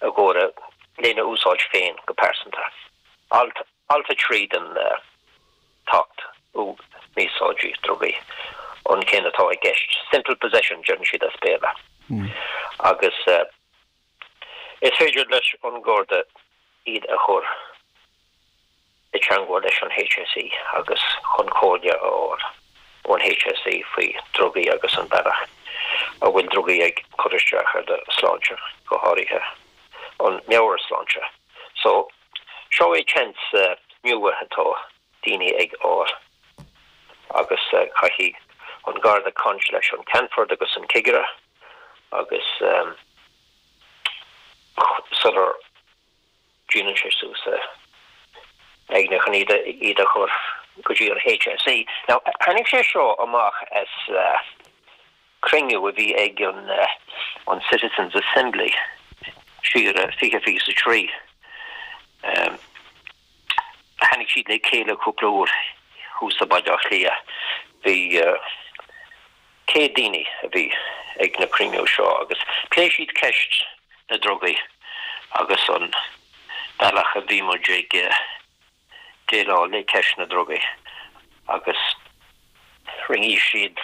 agus lena úsáid féin go pearsanta. Alt, Alt 3 den tAcht um Mí-Úsáid Drugaí, an ceann atá i gceist. Simple possession deireann siad as Béarla. Agus is féidir leis an nGarda iad a chur. i dteangmháil leis an HSE agus chun comhairle a fháil ón HSE faoi dhrugaí agus an bealach a bhfuil drugaí ag cur isteach ar do shláinte, go háirithe an meabhairshláinte. So, seo é seans nua atá daoine ag fháil agus caithfidh an Garda caint leis an Ceannfort agus an Cigire agus sular. Déanann sé suas a aigne chun iad a chur go dtí an HSE. Now tháinig sé seo amach as cruinniú a bhí ag an Citizens Assembly siar 2023. Tháinig siad le chéile cúpla uair thuas i mBaile Átha Cliath. Bhí 100 daoine a bhí ag na cruinnithe seo agus pléigh siad ceist na drugaí agus an bealach a bhí muid ag déileáil le ceist na drugaí agus rinne siad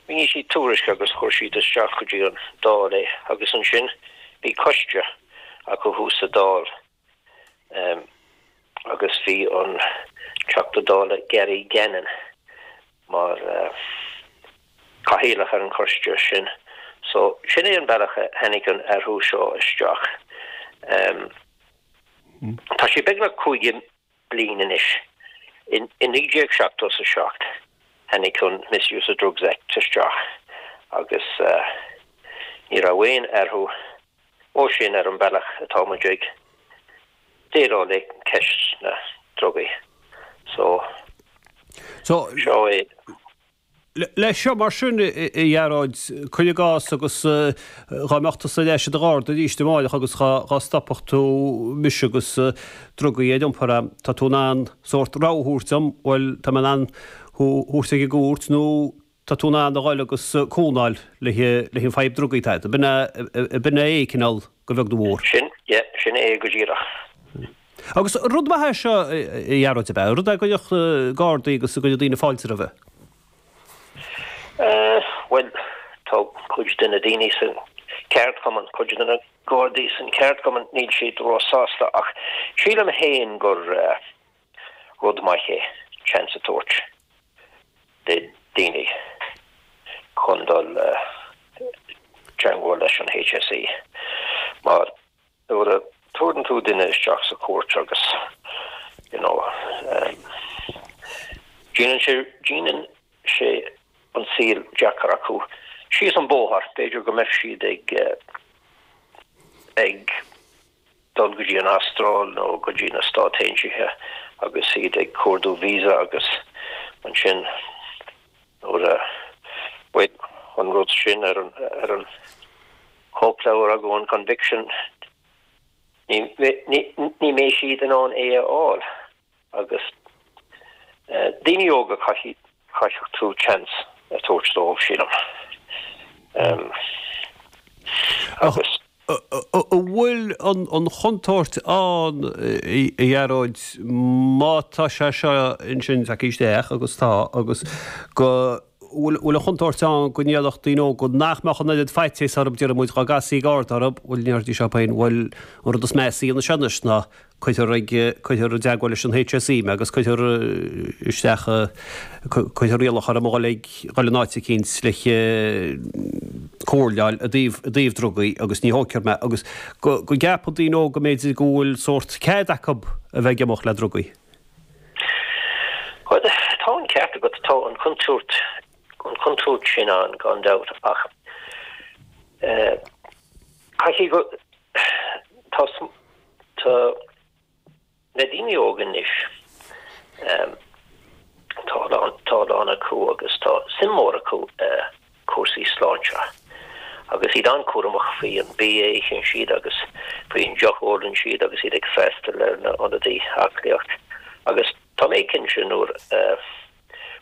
rinne siad tuairisc agus chuir siad isteach go dtí an Dáil é agus ansin bhí coiste acu thuas sa Dáil. agus bhí an Teachta Dála Gary Gannon mar Chathaoirleach ar an choiste sin. So, sin é an bealach a tháinig an athrú seo isteach. Tá sé beagnach caoga bliain anois. Ó 1977 tháinig an Misuse of Drugs Act isteach agus ní raibh aon athrú ó sin ar an bhealach atá muid ag déileáil le ceist na ndrugaí. So, seo é. Leis seo, mar sin, a Ghearóid, cuir i gcás, agus dhá mbeadh tusa ar ais i do gharda arís amáireach agus dhá stopfadh tú mise agus drugaí ar iompar agam, tá tú in ann sórt rogha a thabhairt dom, bhuel, tá mé in ann thú thabhairt ag an gcúirt nó tá tú in ann a dhul agus cúnamh a fháil le fadhb drugaí. B'in é é cineál, a bheag nó a mhór. Sin é go díreach. Agus rud maith é seo, a Ghearóid, ab ea? Rud a gcuirfeadh Gardaí agus a gcuirfeadh daoine fáilte roimhe? Bhuel, tá cuid de na daoine sa cheardchumann, cuid de na Gardaí sa cheardchumann, níl siad ró-sásta, ach sílim féin gur rud maith é an seans a tabhairt do dhaoine chun dul i dteangmháil leis an HSE. nuair a tabhaireann tú duine isteach sa chúirt agus you know em déanann sé déanann sé an saol deacair acu síos an bóthar b'fhéidir go mbeadh siad ag ag dul go dtí an Astráil nó go dtí na Stáit Aontaithe agus iad ag cuardú visa agus ansin Nuair a bhí an rud sin ar an chóipleabhar agat, Conviction, ní bheadh siad in ann é a fháil. Agus daoine óga, chaithfeadh tú chance a tabhairt dóibh, sílim. An bhfuil an chontúirt ann, a Ghearóid, má tá sé seo anois tagtha isteach, agus tá, agus go, bhfuil, bhfuil an chontúirt ann go ndéanfadh daoine óga, nach mbeadh an oiread faitíos orthu, deirimid, dhá gcasfaí garda orthu, bhuel, mar a dúirt sí féin, bhuel, an rud is measa, faoi seo anois, ná, cuirfear ag, cuirfear i dteagmháil leis an HSE agus cuirfear isteach, cuirfear iallach orm a dhul ag, dhul in áit eicínt le haghaidh comhairleáil i dtaobh, i dtaobh drugaí agus ní thógfar mé, agus go, go gceapann daoine óga b'fhéidir go bhfuil sórt cead acu a bheith ag imeacht le drugaí. Bhuel, tá an ceart agat, tá an chontúirt, an chontúirt sin ann gan dabht ach, eh, caithfidh go, tá, Tá na daoine óga anois, tá a lán acu agus tá suim mór acu i cúrsaí sláinte agus iad an-cúramach faoi an bia a itheann siad agus faoi an deoch a ólann siad agus iad ag freastal ar na hionadaí aclaíocht agus tá mé cinnte nuair a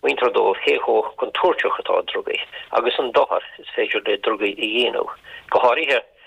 múintear dóibh cé chomh contúirteach atá drugaí agus an dochar is féidir le drugaí a dhéanamh, go háirithe.